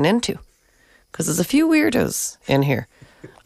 into, 'cause there's a few weirdos in here.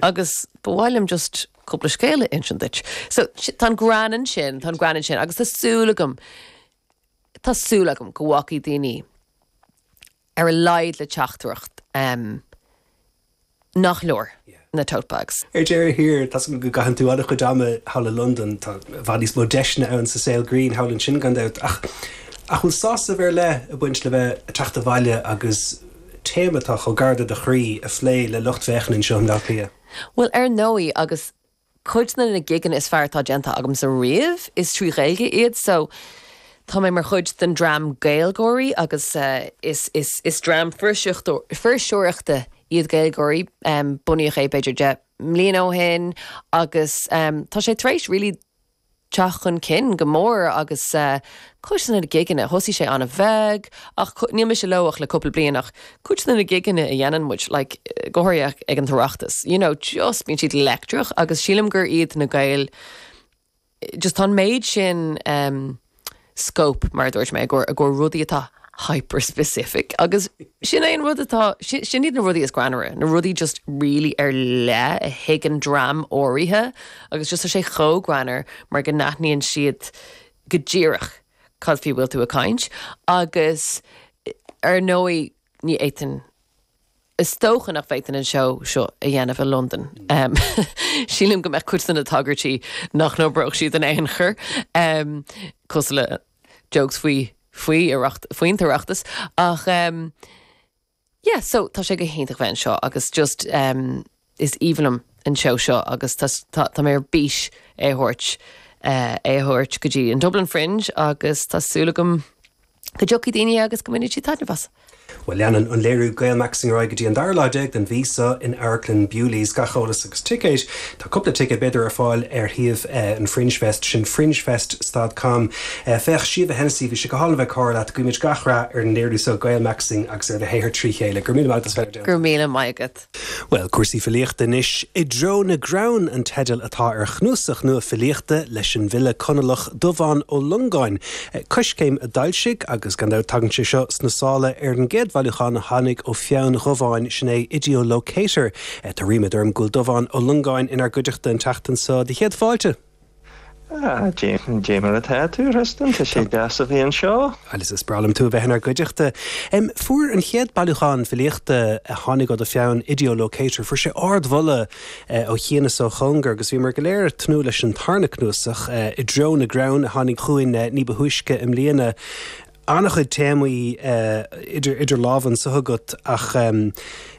Agus ba mhaith liom just cúpla scéal a insint duit. So, tá an greann ansin, tá an greann ansin, agus tá súil agam, tá súil agam go bhfágfaidh daoine ar a laghad le teachtaireacht. Nach leor na tote bags? Ar deireadh thiar, tá 's agam go gcaitheann tú an-chuid ama thall i Londain. Tá i bhfad níos mó deiseanna ann sa saol grinn thall ansin, gan dabht. Ach an bhfuil sásamh ar leith ag baint le bheith ag teacht abhaile agus téama atá chomh gar do do chroí a phlé le lucht féachana anseo i mBleá Cliath? Bhuel, ar ndóigh, agus cuid de na gigeanna is fearr atá déanta agamsa riamh, is trí Ghaeilge iad so tá mé mar chuid den dream GaelGáirí agus is dream fuirseoireachta iad GaelGáirí. Bunaíodh é b'fhéidir deich mbliana ó shin agus tá sé tar éis really teacht chun cinn go mór agus cuid de na gigeanna, thosaigh sé an-bheag ach níl mise leo ach le cúpla bliain ach cuid de na gigeanna a dhéanann muid, like go háirithe ag an tOireachtas, you know just bíonn siad leictreach agus sílim gur iad na Gaeil, just tá an méid sin eh. scope, mar a dúirt mé, i gcomhair rudaí atá hyper-specific agus sin é an rud atá, sin iad na rudaí is greannmhaire, na rudaí just really ar leith a thuigeann dream áirithe agus just tá sé chomh greannmhar mar go n-aithníonn siad go díreach cad faoi a bhfuil tú ag caint agus ar ndóigh ní fhéadfainn Is dócha nach bhféadfainn an seó seo a dhéanamh i Londain. Sílim go mbeadh cuid de na tagairtí nach n-oibreodh siad in aon chor, cosúil le jokes faoi faoi Oireacht, faoin tOireachtas, ach yeah, so tá sé go hiontach bheith anseo agus just. Is aoibhinn liom an seó seo agus tá mé ar bís é a thabhairt, é a thabhairt go dtí an Dublin Fringe agus tá súil agam go dtiocfaidh daoine agus go mbainfidh siad taitneamh as. Bhuel, leanann an léiriú Gaelmaxxing ar aghaidh go dtí an dara lá déag den mhí seo in Amharclann Bewley's. Gach eolas agus ticéid, tá cúpla ticéad b'fhéidir, ar fáil ar shuíomh an Fringe Fest, sin fringefest.com. Féach, Síomha Hennessy, bhí sé go hálainn a bheith ag comhrá leat. Guímid gach rath ar an léiriú seo Gaelmaxxing agus ar do shaothar trí chéile. Go raibh míle maith agat, Fennel Downey. Go raibh míle maith agat. Bhuel, cúrsaí filíochta anois, I dTreo na gCrann an teideal atá ar chnuasach nua filíochta leis an bhfile Conallach Dubhán Ó Longáin, Coiscéim a d'fhoilsigh, agus gan dabht tagann sé seo sna sála ar an gcéad bhailiúchán a tháinig ó pheann Dhubháin, sin é IDEO Locator. Tá ríméad orm go bhfuil Dubhán Ó Longáin inár gcuideachta an tseachtain seo. Do chéad fáilte! Déan, déan mar atá tú, a Thristan, tá sé deas a bheith anseo. Alice, is breá liom tú a bheith inár gcuideachta. Fuair an chéad bailiúchán filíochta a tháinig ó do pheann, Ideolocator, fuair sé ardmholadh ó chian is ó chóngar agus bhíomar go léir ag tnúth leis an tarna cnuasach, I dTreo na gCrann, a tháinig chugainn ní ba thúisce i mbliana. An-chuid téamaí idir lámha anseo agat ach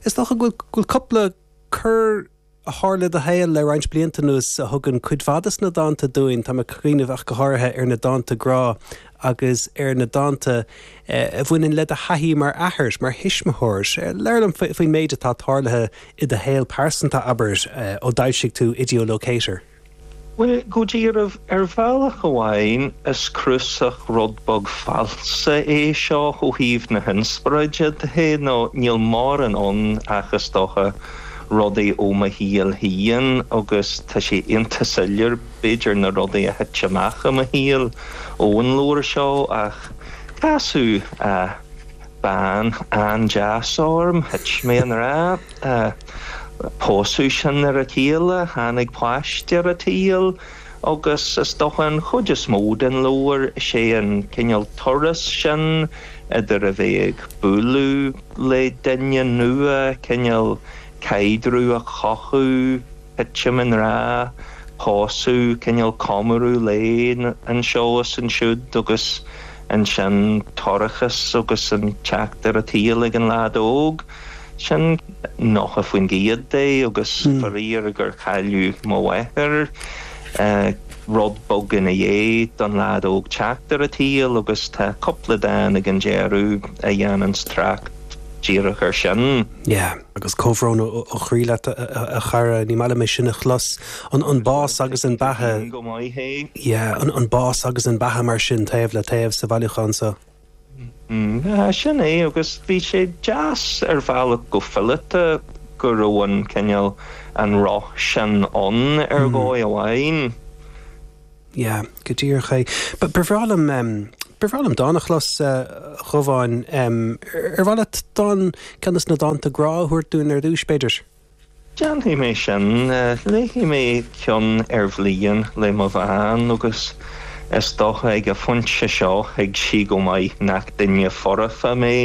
is dócha go bhfuil cúpla cor, a tharla i do shaol le roinnt blianta anuas a thugann cuid mhaith des na dánta dúinn. Táim ag cuimhneamh ach go háirithe ar na dánta grá agus ar na dánta a bhaineann le do thaithí mar athair, mar thuismitheoir. Labhair liom faoin méid atá tarlaithe i do shaol pearsanta, abair, ó d'fhoilsigh tú Ideolocator. Bhuel, go dearbh, ar bhealach amháin is cnuasach rud beag falsa é seo ó thaobh na hinspioráide de, nó níl mórán ann ach, is dócha, rudaí ó mo shaol féin agus tá sé ionta soiléir, b'fhéidir, na rudaí a thit amach i mo shaol ón leabhar seo ach casadh bean an-deas orm, thit mé i ngrá. Pósadh sinn ar a chéile, tháinig páiste ar a tsaol agus is dócha an chuid is mó den leabhar is é an cineál turas sin idir a bheith ag bualadh le duine nua, cineál caidreamh a chothú, titim i ngrá, pósadh, cineál comóradh lae anseo is ansiúd agus ansin toircheas agus an teacht ar a tsaol ag an leaid óg. Sin 90% de agus faraor gur cailleadh mo mháthair, rud beag i ndiaidh don leaid óg teacht ar a tsaol agus tá cúpla dán ag an deireadh a dhéananns trácht díreach ar sin. Yeah, agus comhbhrón ó chroí leat a chara, ní maith liom é sin a chlos, an bás agus an beatha, yeah, an bás agus an beatha mar sin taobh le taobh sa bhailiúchán so. Sea, sin é, agus bhí sé deas ar bhealach go fileata go raibh an cineál, an roth sin ann ar dhóigh amháin. Sea, go díreach é. Ba bhreá liom, ba bhreá liom dán a chlos, a Dhubháin. Ar mhaith leat dán, ceann des na dánta grá a thabhairt dúinn ar dtúis, b'fhéidir? Déanfaidh mé sin. Léifidh mé ceann ar bhliain le mo bhean agus is dócha ag a phointe seo thuig sí go maith nach duine foirfe mé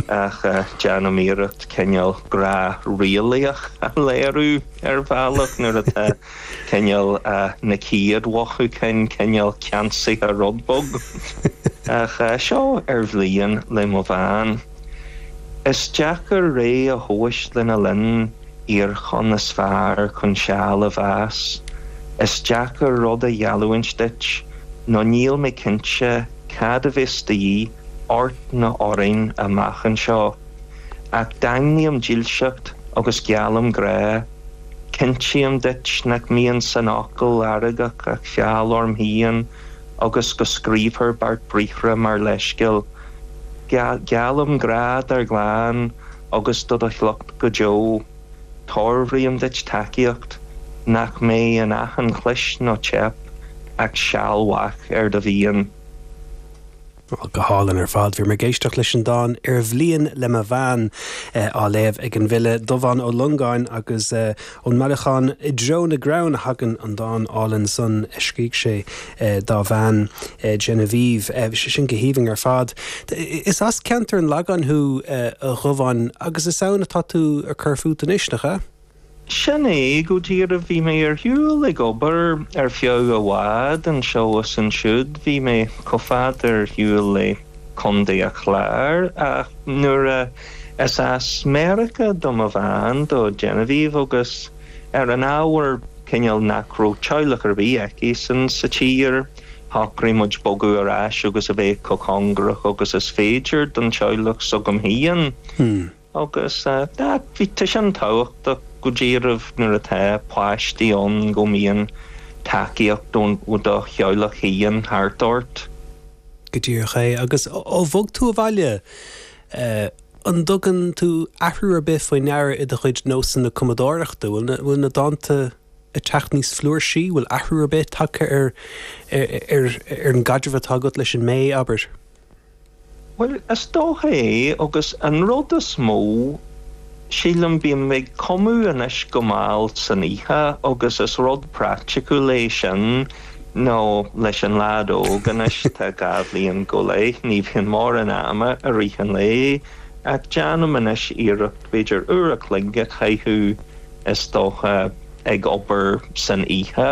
ach déanaim iarracht cineál grá realaíoch a léiriú ar bhealach nuair atá cineál na céad mhothúcháin, cineál ceansaithe rud bog. Ach seo ar bhliain le mo bhean. Is deacair ré a thomhais lena linn iarchonn is fearr chun seal a mheas. Is deacair rud a gheallúint duit nó níl mé cinnte cad a bheas de dhíth ort nó orainn amach anseo. Ach daingním dílseacht agus geallaim grá. Cinntím duit nach mbíonn san fhocal feargach ach feall orm féin agus go scríobhthar beart briathra mar leithscéal. Geallaim grá dár gclann agus do do shliocht go deo. Tiarbhraím duit tacaíocht nach mbeidh in achan chlis nó teip ach sealbh ar do mhian. Bhuel, go hálainn ar fad. Bhí mé ag éisteacht leis an dán 'Ar Bhliain' le mo bhean, á léamh ag an bhfile Dubhán Ó Longáin, agus ón mbailiúchán I dTreo na gCrann a thagann an dán álainn san a scrígh sé dá bhean, Genevieve. Bhí sé sin go haoibhinn ar fad. Is as ceantar an Lagáin thú, a Dhubháin, agus is ann atá tú ag cur fút anois, nach ea? Sin é go díreach. Bhí mé ar shiúl ag obair ar feadh i bhfad, anseo is ansiúd. Bhí mé chomh fada ar shiúl le Contae an Chláir, ach nuair a, is as Meiriceá do mo bhean, do Genevieve, agus ar an ábhar cineál nach raibh teaghlach ar bith aici-san sa tír, shocraigh muid bogadh ar ais agus a bheith chomh cóngarach agus is féidir don teaghlach s'agam fhéin. Agus bhí sé sin tábhachtach go díreach nuair atá páistí ann go mbíonn tacaíocht ó do theaghlach féin thart ort. Go díreach é. Agus ó bhog tú abhaile, an dtugann tú athrú ar bith faoi deara i do chuid nósanna cumadóireachta? Bhfuil na dánta ag teacht níos flúirsí, bhfuil athrú ar bith tagtha ar an gcaidreamh atá agat leis an mBé, abair? Bhuel, is dócha é agus an rud is mó, sílim, bím ag cumadh anois go mall san oíche agus is rud praiticiúil é sin nó leis an leaid óg anois atá dhá bhliain go leith, ní bhíonn mórán ama i rith an lae ach déanaim anois iarracht b'fhéidir uair a chloig a chaitheamh is dócha ag obair san oíche.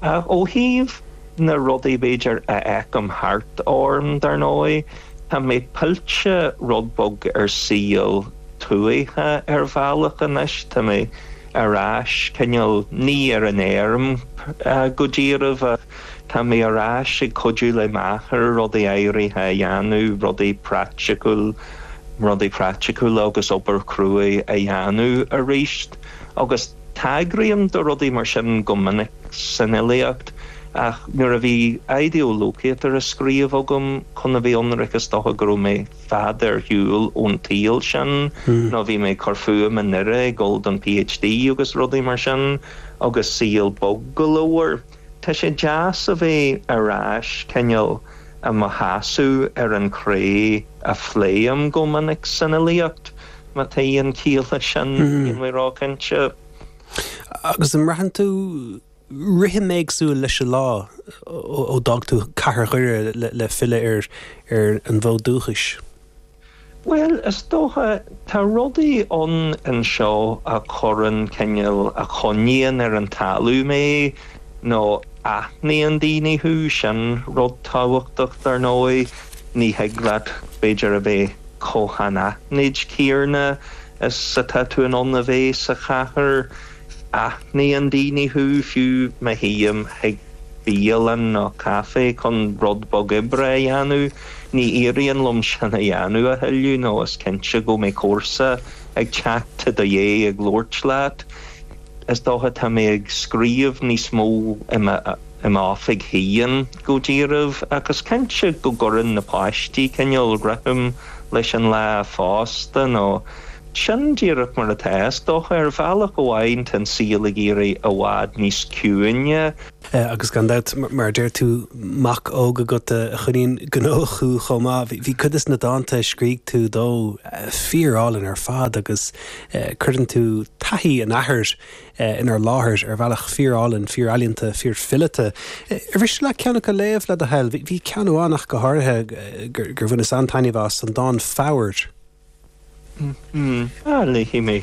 Ó thaobh. na rudaí b'fhéidir a fheicim thart orm dar ndóigh, tá mé pillte rud beag ar saol tuaithe ar bhealach anois, tá mé ar ais cineál, ní ar an fheirm go díreach ach tá mé ar ais ag cuidiú le m'athair rudaí áirithe a dhéanamh, rudaí praiticiúil, rudaí praiticiúla agus obair cruaidh a dhéanamh aríst agus. Tagraím do rudaí mar sin go minic san fhilíocht, ach nuair a bhí Idiolocator á scríobh agam chun a bheith ionraic is dócha go raibh mé fad ar shiúl ón tsaol sin nó bhí mé ag cur fúm i nDoire ag dul don PhD agus rudaí mar sin agus saol bog go leor. Tá sé deas a bheith ar ais cineál i mo sheasamh ar an chré a phléim go minic san fhilíocht. Má tá aon chiall leis sin, níl mé róchinnte. Agus an mbraitheann tú rithim éagsúil leis an lá ó d'fhág tú cathair Dhoire le filleadh ar an bhfód dúchais? Bhuel, is dócha, tá rudaí ann anseo a chuireann cineál, a choinníonn ar an talamh mé nó aithníonn daoine thú, sin rud tábhachtach, dar ndóigh. Ní thig leat, b'fhéidir, a bheith. Chomh hanaithnid céanna is atá tú in ann a bheith sa chathair. Aithníonn daoine thú, fiú má théim chuig bialann nó caifé chun rud beag oibre a dhéanamh. Ní éiríonn liom sin a dhéanamh, a thuilleadh, nó is cinnte go mbeidh comharsa ag teacht go dtí ag labhairt leat. Is dócha tá mé ag scríobh níos mó i m'oifig féin go díreach, ach is cinnte go gcuireann na páistí cineál rithim leis an lá fosta, nó sin díreach mar atá, is dócha. Ar bhealach amháin, tá an saol ag éirí i bhfad níos ciúine. Agus gan dabht, mar a deir tú, mac óg agat a choinníonn gnóthach thú chomh maith. Bhí cuid des na dánta a scrígh tú dó fíorálainn ar fad agus cuireann tú taithí an athar inár láthair ar bhealach fíorálainn, fíorealaíonta, fíorfileata. Ar mhiste leat ceann acu a léamh, le do thoil? Bhí ceann amháin ach go háirithe gur bhaineas an-taitneamh as, an dán 'Fobhair' Léifidh mé.